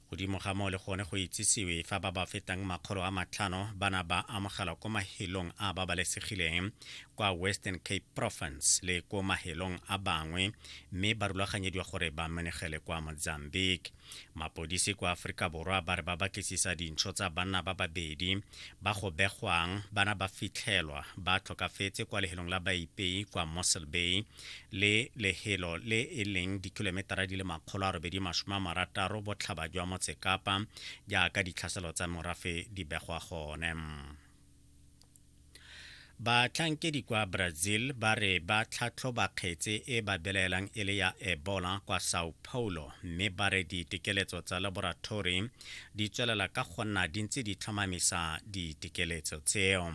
Godimo ga moo le gone go itsisiwe fa ba ba fetang makgolo a matlhano ba na ba amogelwa ko mahelong a babalesegileng kwa Western Cape Province le ko mahelong a bangwe mme ba rulaganyediwa gore ba menegele kwa Mozambique. Mapodisi kwa Aforika Borwa ba re ba batlisisa dintsho tsa banna ba babedi ba go begwang bana ba fitlhelwa ba tlhokafetse kwa lehelong la baipei kwa Mossel Bay le lehelo le e leng dikilometara di le makgolo a robedi masome a marataro botlhaba jwa motsekapa jaaka ditlhaselo tsa morafe di begwa gone batlhankedi kwa brazil ba re ba tlhatlhoba kgetse e ba belaelang e le ya ebola kwa sao paulo mme ba re ditekeletso tsa laboratory di tswelela ka go nna di ntse di tlhomamisa ditekeletso tseo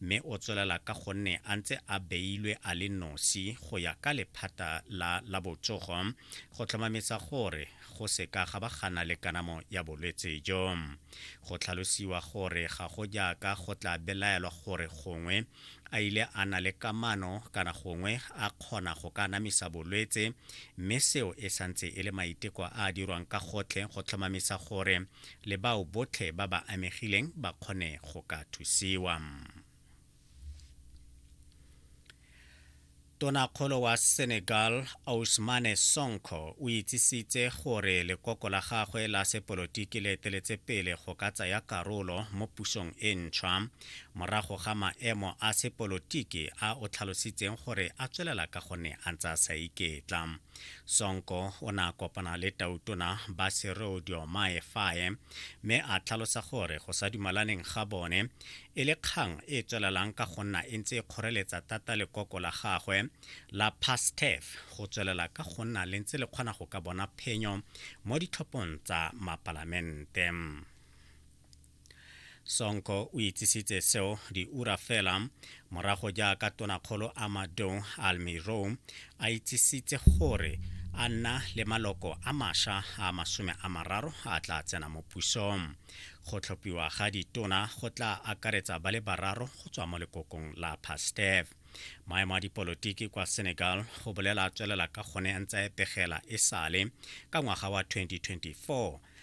mme o tswelela ka gonne a ntse a beilwe a le nosi go ya ka lephata la la botsogo go tlhomamisa gore go seka ga ba gana le kanamo ya bolwetse jo. Go tlhalosiwa gore ga go jaaka go tla belaelwa gore gongwe a ile a na le kamano kana gongwe a kgona go ka anamisa bolwetse mme seo e santse e le maiteko a a dirwang ka gotlhe go tlhomamisa gore le bao botlhe ba ba amegileng ba kgone go ka thusiwa. Tonakgolo wa Senegal Ousmane Sonko o itsisitse gore lekoko la gagwe la sepolotiki le eteletse pele go ka tsaya karolo mo pusong e ntšhwa morago ga maemo a sepolotiki a o tlhalositseng gore a tswelela ka gonne a ntse a sa iketla. Sonko o ne a kopana le tautona ba Serodio Maefae mme a tlhalosa gore go sa dumalaneng ga bone e le kgang e e tswelelang ka go nna e ntse e kgoreletsa thata lekoko la gagwe la Pastef go tswelela ka go nna le ntse le kgona go ka bona phenyo mo ditlhophong tsa mapalamente. sonko o itsisitse seo diura fela morago jaaka tonakgolo amado almiro a itsisitse gore a nna le maloko a masha a masome a mararo a tla tsena mo pusong go tlhophiwa ga ditona go tla akaretsa ba le bararo go tswa mo lekokong la pastev maemo a dipolotiki kwa senegal go bolela tswelela ka gone a ntse a epegela e sale ka ngwaga wa 2024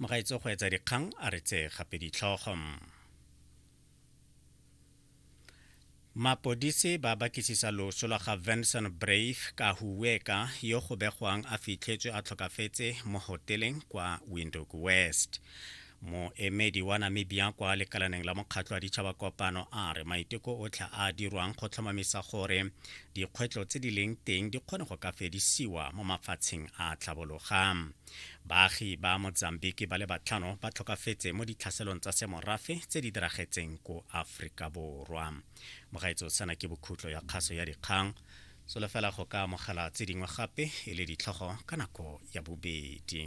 mogaetso go etsa dikgang a re tse gape ditlhogo mapodisi ba bakisisa loso lwa ga vincent brave ka huweka yo go begwang a fitlhetswe a tlhokafetse mo hoteleng kwa windhoek west Moemedi wa Namibia kwa lekalaneng la Mokgatlho wa Ditšhaba Kopano a re maiteko otlhe a a dirwang go tlhomamisa gore dikgwetlho tse di leng teng di kgone go ka fedisiwa mo mafatsheng a tlhabologa. Baagi ba Mozambique ba le batlhano ba tlhokafetse mo ditlhaselong tsa semorafe tse di diragetseng ko Aforika Borwa. Mogaetso sana ke bokhutlo ya kgaso ya dikgang. Solofela go ka amogela tse dingwe gape e le ditlhogo ka nako ya bobedi.